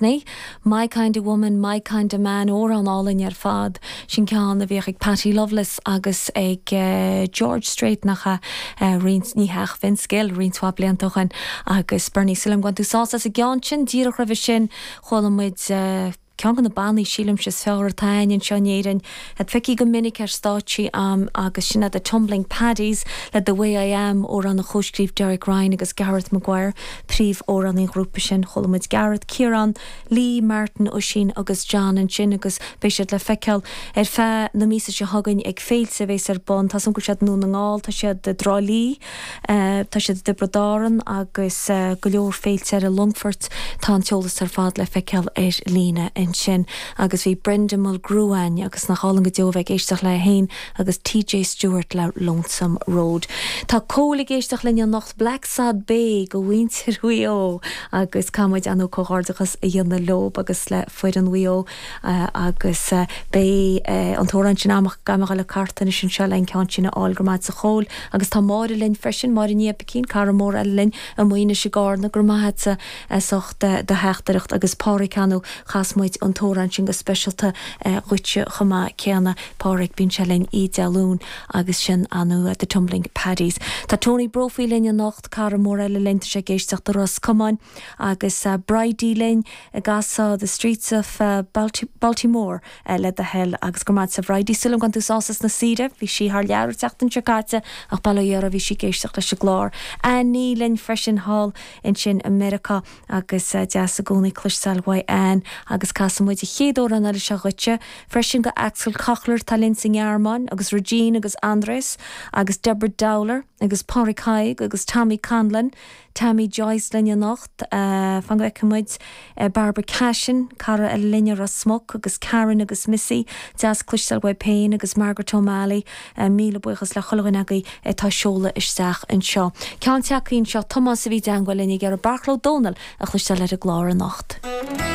Putney, My kind of woman, my kind of man, amhrán álainn ar fad. Sin ceann a bhíodh ag Patty Loveless agus ag George Strait, nach ea? roinnt, ní hea, ach Vince Gill roinnt mhaith blianta ó shin. Agus Bernie, sílim go mbain tú sásamh as an gceann sin díreach roimhe sin, chuala muid ceann de na bannaí, sílimse, is fearr atá ann anseo in Éirinn. a d'fheicfeá go minic ar stáitsí ann agus sin é The Tumbling Paddies le The Way I Am, amhrán a chomhscríobh Derek Ryan agus Gareth Maguire, príomhamhránaí an ghrúpa sin. Chuala muid Gareth, Ciarán, Lee, Martin, Oisín agus John ansin agus beidh siad le feiceáil ar feadh na míosa seo chugainn ag féilte a bheas ar bun, tá súil agam, Dún na nGall, tá siad i dTrá Lí, Tá siad i dTiobraid Árann agus go leor féilte eile, Longfort, tá an t-eolas ar fad le feiceáil ar líne ansin. Agus bhí Brenda Mulgrew againn agus nach álainn go deo a bheith ag éisteacht léi féin agus TJ Stewart le Lonesome Road. Tá Cóil ag éisteacht linn anocht, Blacksod Bay do mhuintir Mhaigh Eo agus caithfidh muid an-chomhghairdeachas a dhéanamh leob agus le foireann Mhaigh Eo. agus beidh an t-amhrán sin amach gan mhoill le cartadh anois anseo le an ceann sin a fháil. Go raibh maith agatsa a Chóil. Agus tá Máire linn freisin, Máire Ní Oibicín, cara mór eile linn amuigh ansin i gCarna. Go raibh maith agat as ucht do theachtaireacht. Agus Pádraic ar ndóigh, chas muid an t-amhrán sin go speisialta dhuitse chomh maith céanna. Pádraic, bíonn sé linn Oíche Dé Luain agus sin ar ndóigh The Tumbling Paddies. Tá Tony Brophy linn anocht, cara mór eile linn, tá sé ag éisteacht i Ros Comáin. agus Bridie linn An gcasfá The Streets of Baltimore le do thoil. Agus go raibh maith agatsa a Bhridie, sílim go mbain tú sásamh as na saoire, bhí sí thar lear an tseachtain seo caite ach bail ó Dhia uirthi bhí sí ag éisteacht leis an gclár. Annie linn freisin thall ansin i Meiriceá agus deas i gcónaí cloisteáil uait Annie. Agus casfaidh muid an chéad amhrán eile seo dhuitse freisin do Axel Kochlar atá linn sa nGearmáin agus Regine agus Andreas agus Deborah Dowler agus Padraig Thaidhg agus Tommy Conlon, Tammy Joyce linn anocht. Fan go bhfeicfidh muid. Barbara Cashin, cara linn i Ros Muc agus Karen agus Missy, deas cloisteáil uaibh féin agus Margaret O'Malley. Míle buíochas le chuile dhuine agaibh atá ag seoladh isteach anseo. Ceann téacsaí anseo, Tomás a bhí i dteangmháil linn ag iarraidh Beairtle Ó Domhnaill a chloisteáil ar an gclár anocht.